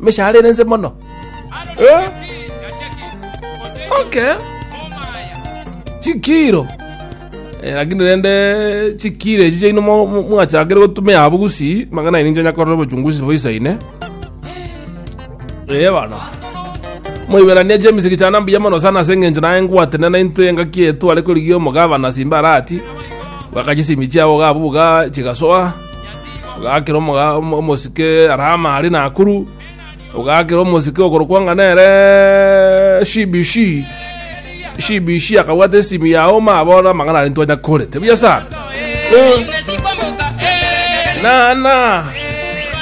Emeshahara ere ense mono. Eh? Okay. Chikiro. Eh, lakini rende chikiro echi chaino mo- mo- mwachakire gotumia abwo gusii, mang'ana aino inche nyakorera obochunguzi boisaine. Eh, bana. moiberania james gichana mbuya mono sana ase eng'encho naye ngwatenena intwe engaki etu are korigia omogabana simba arati bakachisimia chiabo gabo buga chigasoa Ogakera omoga- omo- omosike Rama aria Nakuru, ogakera omosike okorokwa ng'a nere CBC. CBC akabwata esimi ya Oma abona amang'ana aria ntwanya kore. Tebuya sana. Eh, Nana.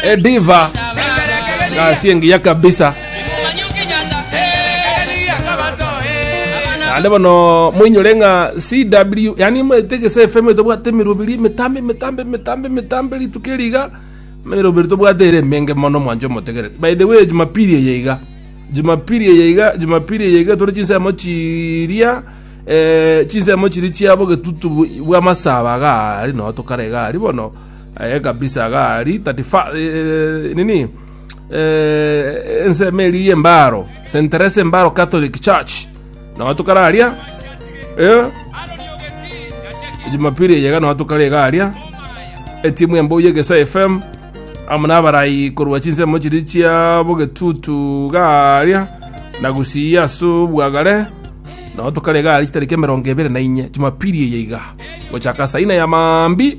Ediva. Gasi engiya kabisa. naende bono moinyore ng'a cw yaani mwete gese fm tobwate emiroberi emitambe emitambe emitambe emitambe rituko eri iga emiroberi tobwate ere emenge mono mwancha omotegereri by the way jumapili eye iga jumapili eye iga jumapili eye iga tore chinsemo chiria eh, chinsemo chiria chia bogetutu bw- bwa masaba iga aria noo tokare iga aria bono aye kabisa iga aria 31 eh, nini eh, ensemo eri y'embaro St. Teresa Embaro Catholic Church nao tokare aria eh, Jumapili eyega nao tokare iga aria etimu embuya egesa FM amo nabarayi korwa chinsemo chiri chia bogetutu garia na gusiya ase obwagare nao tokare iga aria chitariki emerongo ebere na inye Jumapili eye iga gochaka saa ine ya mambi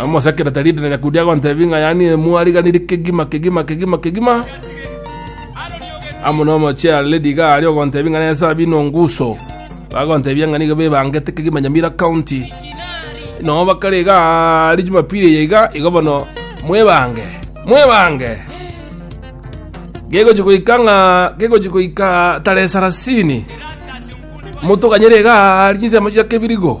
amosekera taridi na nyakudi agontebi ng'a yani mwariganiri kegima kegima kegima kegima amuno mochea lady ga ari ogontebi ng'a nesa bino nguso bagontebia ng'a nigo bebangete kegima nyamira county no bakare iga ari jumapili eye iga igo bono mwebange mwebange gegochi goika ng'a gegochi goika tarehe sarasini motoganyere iga ari chinsemo chia kebirigo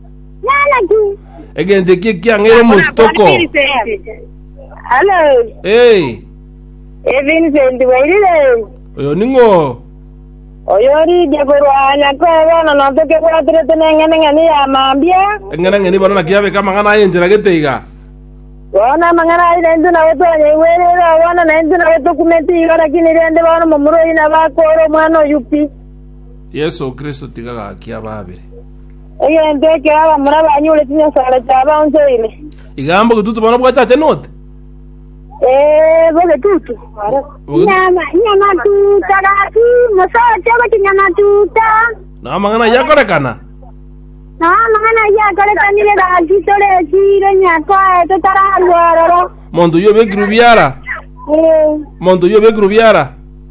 Nyanaki. egento eki ekiang'aire omositoko Hello. Eh, Eh, Vincent Wairire. oyo ning'o Oyo orige korwa Nyakoe bono notoke bwatirete neng'ene ng'eni ya mambia. eng'ana ng'eni bono naki abeka amang'ana aye enchera gete iga Bono amang'ana ayi nainto nabo twanyaigwerere oo bono nainto nabo tokumeti igo lakini rende bono momura oyi nabo akore omwana oyu pi. yesu kristo tiga gaki ababire Egento ekero abamura banyure chinyasare chiabo onsi oire. Iga mboka etutu bono bwachachenote. Ee, bobe tutu. Nyama, nyama tuta gaki, mosote gochi nyama tuta. Na amang'ana ayio akorekana. Na amang'ana ayio akorekanire gaki tore chiro nyakwae totararwa ororo. Monto oyio obekirwe biara. Ee, Monto oyio obekirwe biara.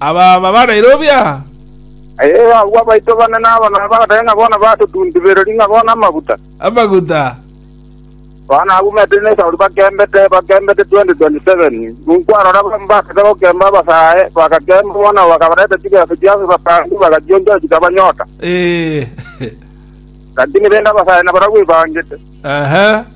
Aba babareire obiaha? Ee, agwo abaito bane nabo na bagateba ng'a bono batotuntibereria ng'a bono amaguta. Amaguta. Bono agumete nesauri bakembete, bakembete 2027. Ninkwarora abwo mbagachete gokemba abasae, bagakemba bono bakabareta chibesa chiabo batangi bagachionchora chikabanyota. Ee. Lakini rende abasae nabarabwo ebangete. Ehe.